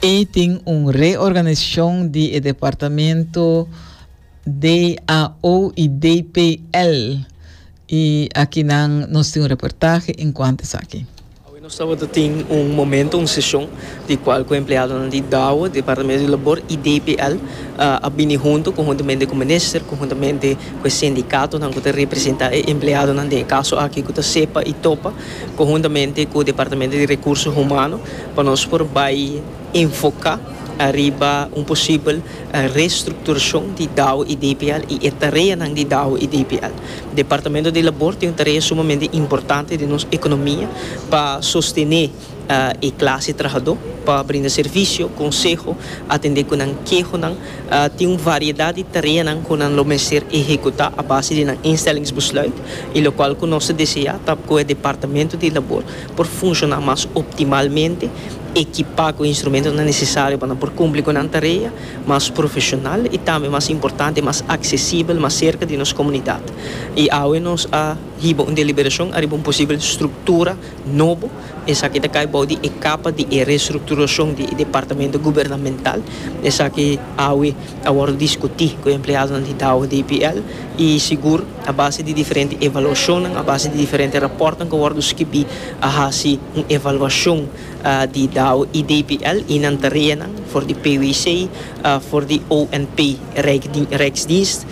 E tin un reorganisacion di e departamento DAO y DPL. Y aki nan nos tin un reportahe en cuanto a esaki. Awe nos tabata tin un momento, un sesion, di cual cu empleadonan di DAO, Departamento di Labor, y DPL a bini hunto conhuntamente cu Minister, conhuntamente cu e sindicatonan cu ta representa e empleadonan den e caso aki cu ta sepa y topa. conjuntamente cu Departamento di Recurso Humano pa nos por bay enfoca ariba un posibel restructuracion di Dow y DPL y e tareanan di Dow y DPL. Departamento di Labor tin un tarea sumamente importante den nos economia pa sostene e clase trahador, pa brinda servicio, conseho, atende cu nan kehonan Tin un variedat di tareanan cu nan lo mester ehecuta a base di nan instellingsbesluit y locual cu nos ta desea ta cu e Departamento di Labor por funciona mas optimalmente, ekipa cu instrumentonan necesario pa nan por cumpli cu nan tarea mas profesional y tambe mas importante mas accesibel, mas cerca di nos comunidad. Y awe nos a hiba un deliberacion ariba un posibel structura. Nobo, esaki ta kai bou di e kapa di e restrukturashon di e departamento gubernamental. Esaki awe a wòrdu diskutí ku e empleadonan di Dow DPL i sigur a base di diferente evaluashonnan, a base di diferente rapòrtnan ku a wòrdu skibí a hasi un evaluashon di Dow i DPL i nan tareanan for di PWC, for di ONP Rijksdienst.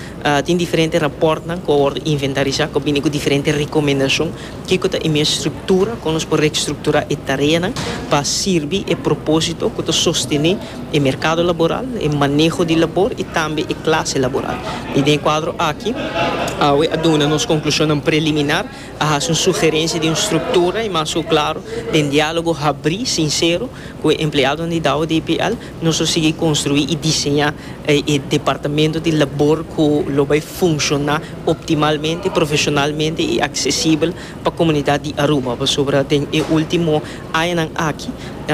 Tin diferente rapòrtnan ku a wòrdu inventarisá ku a bini ku diferente rekomendashon. Kiko ta e mihua struktura kon nos por rekstrukturá e tareanan pa sirbi e propósito ku ta sostené e merkado laboral, e maneho di labor i tambe e klase laboral? I den e kuadro aki, awe a duna nos konklushonnan preliminar, a hasi un sugerensia di un struktura i mas ku klaro den diálogo habrí, sinsero, ku e empleadonan di Douwe DPL, Nos lo sigui konstruí i diseñá e departamento di labor ku lo bai funshoná optimalmente, profeshonalmente i aksesibel pa komunidat di Aruba. Pasobra den e último añanan aki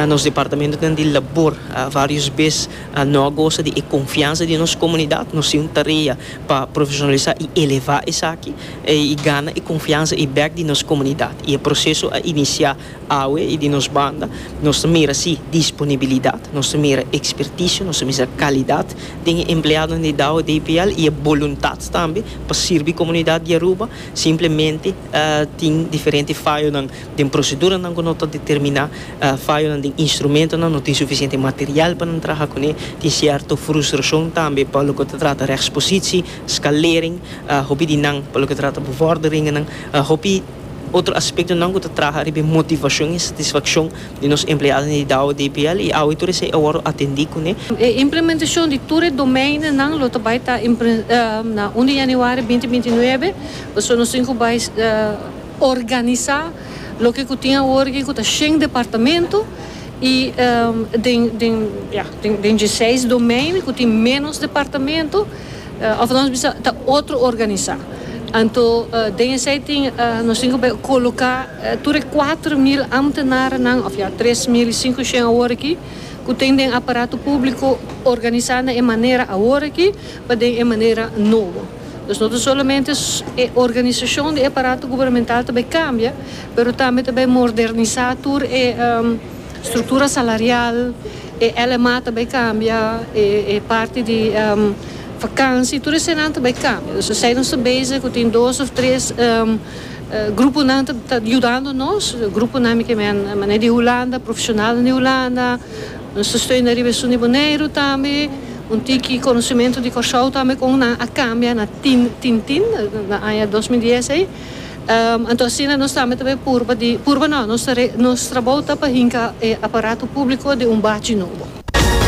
nos departamentonan di labor vários bes no a gosa di e konfiansa di nos komunidat. Nos tin un tarea pa profeshonalisá i elevá esaki i gana e konfiansa i bèk di nos komunidat. I e proseso a inisiá Awe y di nos banda nos ta mira si disponibilidad, nos ta mira experticio, nos ta mira calidad den e empleadonan di Dow DPL y e boluntad tambe pa sirbi comunidad di Aruba, simplemente tin diferente fayonan den proceduranan cu no ta determina, fayonan den instrumentonan, no tin suficiente material pa nan traha cune, tin cierto frustracion tambe pa loke ta trata rechtspositie, scalering, hopi di nan pa loke ta trata bevorderingennan, hopi Otro aspektonan ku ta traha riba e motivashon i satisfakshon di nos empleadonan di Dao DPL i awe tur esei a wòrdu atendí kuné. E implementashon di tur e domeinennan lo ta bai ta na un di yanüari binti binti nuebe, pasobra nos tin ku bai organisá loke ku tin awor aki ku ta shen departamento i den den den dje seis domeinen ku tin ménos departamento. Of nos bisa ta otro organisa. Anto den esei tin nos tin ke koloka tur e kuater mil amtenarnan of ya tres mil i sinku shen awor aki ku tin den aparato publiko organisa na e manera awor aki pa den e manera nobo. Dus no ta solamente e organisashon di e aparato gubernamental ta bai kambia pero tambe ta bai mordernisá tur e. Structura salarial, e LMA ta bay cambia, e parti di vakantie, tur esanan ta bay cambia. Dus esai nos ta bezig cu tin dos of tres gruponan ta yudando nos. Gruponan mi ke men manera di Hulanda, profesionalnan di Hulanda. Nos ta steuna riba esun di Boneiru tambe. Un tiki conocimento di Corsou tambe con nan a cambia na tin tin tin na aña dos mil dies ey. Anto asina nos tambe ta bay purba di, purba no, nos ta nos trabou ta pa hinca e aparato publico di un bachi nobo.